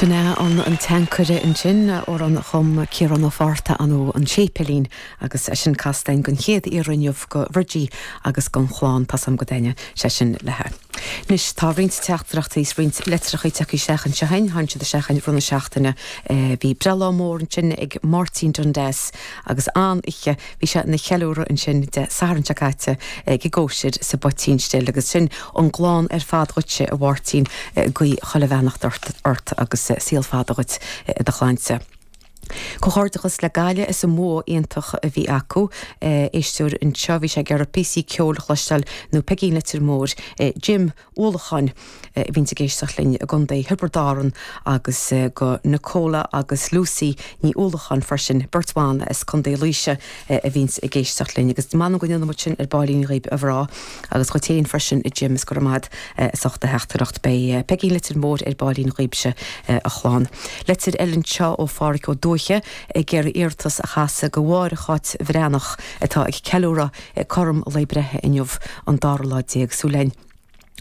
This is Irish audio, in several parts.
Sin é an an tAncaire ansin, amhrán a chum Ciarán Ó Fátharta anno an séipéilín agus eisean casta a'inn den chéad iarraidh inniu go Bhridie agus gon chlann, tá 's agam go dtaitneoidh sé sin leithe. Anois tá roinnt teachtaireachtaí 's roinnt litreachaí tagthaí isteach anseo a'inn, tháinig siad isteach i rith na seachtaine, bhí breithlá mór ansin ag Máirtín Dundass agus an-oiche, Bhí sé ina cheiliúradh ansin Dé Sathairn seo caite ag an gcóisir sa bPoitín Stil agus sin ón gclann ar fad dhuitse a Mháirtín, guí chuile bheannacht ort agus saol fada dhuit i do shláinte. Comhghairdeachas le Gaillimh as an mbua iontach a bhí acu. Éisteoir anseo, bhí sé ag iarraidh píosa ceoil a chloisteáil nó Peigín Leitir Móir, Jim Uallacháin a bhíonns ag éisteacht linn i gContae Thiobraid Árann agus go Nicola agus Lucy Ní Uallacháin freisin, beirt bhan as Contae Laoise a bhíonns ag éisteacht linn. Agus m'anam go ndéanfaimid sin ar baillín dhaoibh a mhná. Agus dhuit féin freisin a Jim, is go raibh maith a'd as ucht do theachtaireacht. Beidh Peigín Leitir Móir ar baillín dhaoibhse a chlann. Litir eile anseo ó Phádhraic Ó Dúiche ag iarraidh iarratas a chasadh go Mháire Cháit Bhreathnach atá ag ceiliúradh cothrom lae breithe inniu an dara lá déag súil a'inn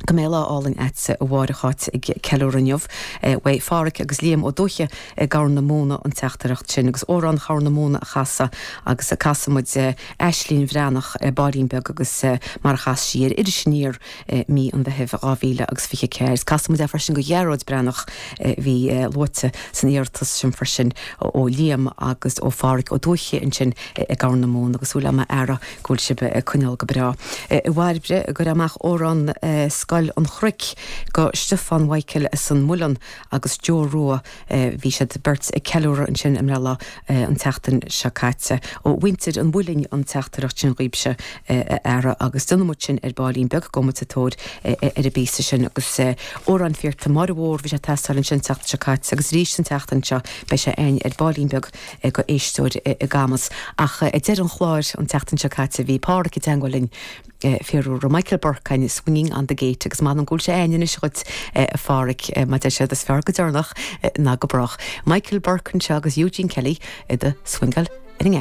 go mbeidh lá álainn a'dsa a Mháire Cháit ag ceiliúradh inniu. Uaidh Phádraic agus Liam Ó Dúiche i gCorr na Móna an teachtaireacht sin agus Amhrán Chorr na Móna a chasadh agus casfaidh muid Aislín Bhreathnach, ar baillín beag agus mar a chas sí é ar Iris Aniar i mí an Mheithimh 2024. Casfaidh muid é freisin go Ghearóid Breathnach a bhí luaite san iarratas sin freisin ó Liam agus ó Phádhraic Ó Dúiche ansin i gCorr na Móna agus súil a'm a fheara go bhfuil sibh ag coinneáil go breá. Uaidh Bhairbre, cuir amach Amhrán Scoil an Chnoic go Stiofán Mhichael as an Muileann agus Joe Rua Bhí siad beirt ag ceiliúradh ansin a mbreithlá an tseachtain seo caite. Ó mhuintir an Mhuilinn an teachtaireacht sin dhaoibhse, a fheara, agus déanfaidh muid sin ar baillín beag agus muid sa tóir ar an bpíosa sin. Agus Amhrán Pheter Máire Mhór, bhí sé ag teastáil ansin an tseachtain seo caite, agus arís an tseachtain seo beidh sé a'inn ar baillín beag go éisteoir i gCamus. Ag deireadh an chláir, an tseachtain seo caite bhí Páraic i dteangmháil linn. fiafraí, Michael Burke, swinging on the gate agus m'anam go bhfuil sé a'inn anois dhuit a Phádraic, mar a deir siad is fearr go deireanach ná go brách. Michael Burke anseo agus Eugene Kelly i do swingáil ar an.